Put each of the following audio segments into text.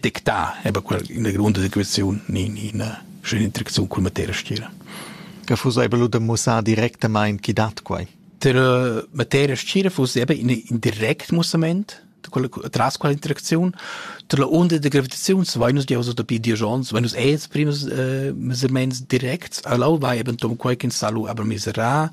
dictà, eben quella grunda situaziun in, in, schön interacziun cul materia stira. Che fu ebel da mussar directamain chi dat quai? Der materia stira fu eben in indirect mussament tras quella interaziun tra unde de gravitaziun vai nus giaus da pidions vai nus es primus uh, mesurements directs allau vai eben tom quai kin salu aber misera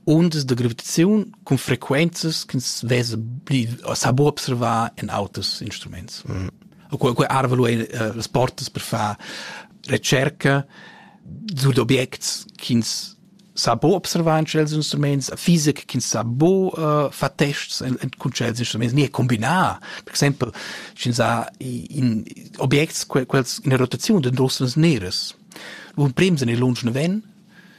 Undas da gravitaziun cun frequenzas ch'ins vesa pli, sa buca observar en auters instruments. Mm. Quei, quei arvelo ei uh, las portas per far recerca sugli objects ch'ins sa bo observar in tschels instruments, fisic ch'ins sa bo uh, far tests en, en cun tschels instruments, ni combinar. Per exempel, sch'ins ha in, objects quels in rotaziun d'endossenas neras. L'un prims en il lunsch naven,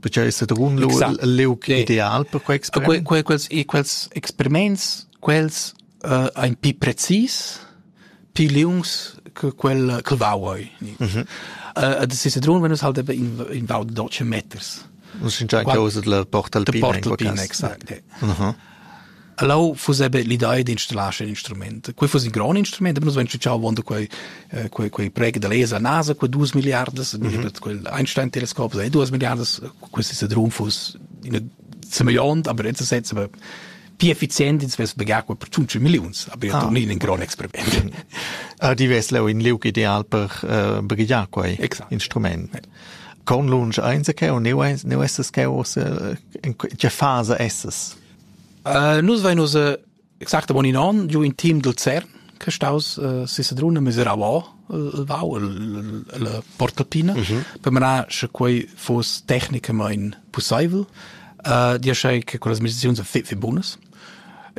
Perché es Sedrun leuc ideal per quei experiment? Quei, quels, quels experiments, quels uh, ein pi precis, pi liungs che quel, quel vauoi. Mm -hmm. uh, ad si Sedrun venus halt in, in vau de 12 meters. Un sincer causa de la porta alpina. De porta alpina, exact. Uh -huh. E leu fuss ei be l'idea d'installar scen instrument. Quei fuss in grond instrument, aber nus vein tschitschau avon da quei eh, quei quei preg da laser NASA quei duas milliardas, mm -hmm. quel Einstein Teleskop, sei duas milliardas, questi se drum fuss in semillont, aber jetzt setz aber più efficienti ins pagar per 5 milioni, aber io ah. torni in un gran experiment. Ah, di ves leu in liug ideal per uh, eh, brigliar quei Exakt. instrument. Conlunsch ainsa cheu? Neu, neu essas cheu ussa? Tge fasa essas? Uh, nus vein ussa exactamain in onn giu in team dal CERN che staus uh, Sisadruna Miserauà il vau la portalpina mm -hmm. per manar sche quei foss tecnicamain pussaivel uh, dir che con las meditaziuns fitfi bunas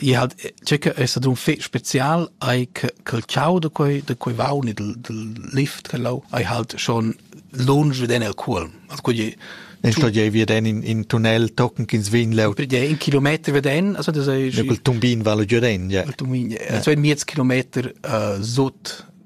I ha tgei che ei stau dun fetg special ei che quel tgau da quei da quei vaun e dal dal lift che lau ei halt schon lunsch veden el cuolm. Also quei ei Dann sto je veden in, in tunnel tochen ch'ins vegn leu. per dire, in kilometer veden, also das ei Ja, col tumbin vala giu den, ja. il tumin, so in miez kilometer uh, sut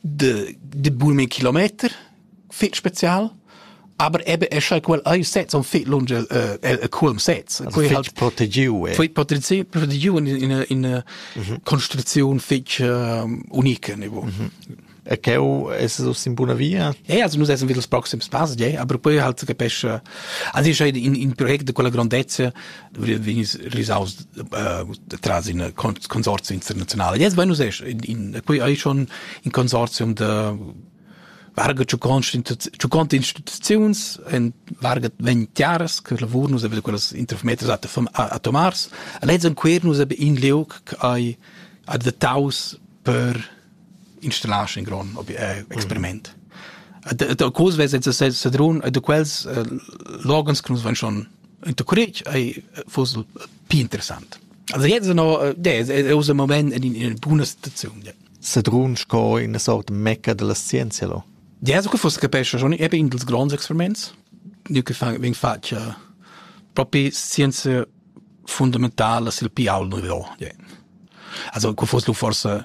de, de bumen kilometer fit spezial aber eben es ja quel ai sets on fit lunge äh, el culm sets quei halt protegiu eh. fit protegiu protegiu in in in construzion fitch unique niveau E cheu es us in buna via? Eh, also nus essen wieder das proximes pass, je, aber poi halt capesce. Also ich in in project de quella grandezza vegnis risaus tras in consorzi internazionale. Yes, Buenos Aires, in, qui hai schon in consortium de varga ciucont instituziuns en varga ventiaras che lavur nus aveva quellas intermeters atomars. Alets en quer nus ab in liug che hai adattaus per installars in grond experiment. Da cos vesa sa Sadrun e da quels l'organs che nus van schon in to courage ei fosse più interessant. Also jetzt no è usa moment in in buona situazione. Sadrun sco in sort mecca della scienza lo. Ja, so che fosse capesce schon eben in dels grands experiments, nu che fang veng fatg propri scienza fundamentala sil pial nouveau. Also co foss lu forsa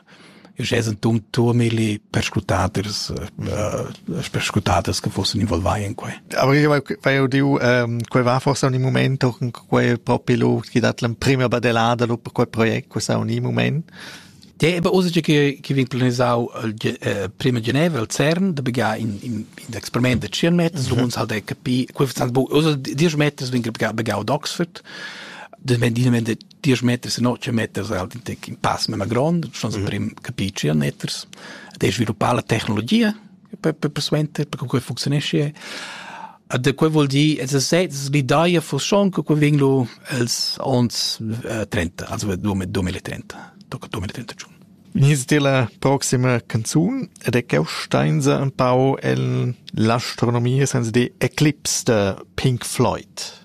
jeu sen tum turmili perscrutadas uh, perscrutadas che fossen involvai in quei. Aber io vai udiu um, quei va forse un momento con quei propi lu chi dat l'emprima badelada lu per quei project, questa un moment Deva ussa che che vegn planisau il prima geneva al CERN da begar in in in experiment da 100 meters, du uns halt e capi, quei sta bu ussa 10 meters vegn begar begar ad Oxford. De wenn die wenn 10 meters und 8 meters halt in pass mit ma grond, schon so prim capi 100 meters. De sviluppar la tecnologia per, per persuenter per quei funzionesce e da quei vuol dir es sez l'idea fu schon che quei vegn lu els ons eh, 30 also 2030 tocca 2031 Nis de la proxima canzun ed è cheu steinsa un pau el l'astronomia senza di eclipse de Pink Floyd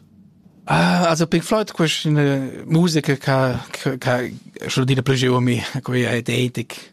Ah, also Pink Floyd questa eine musica che che che schon dire più giù a me quella è edetic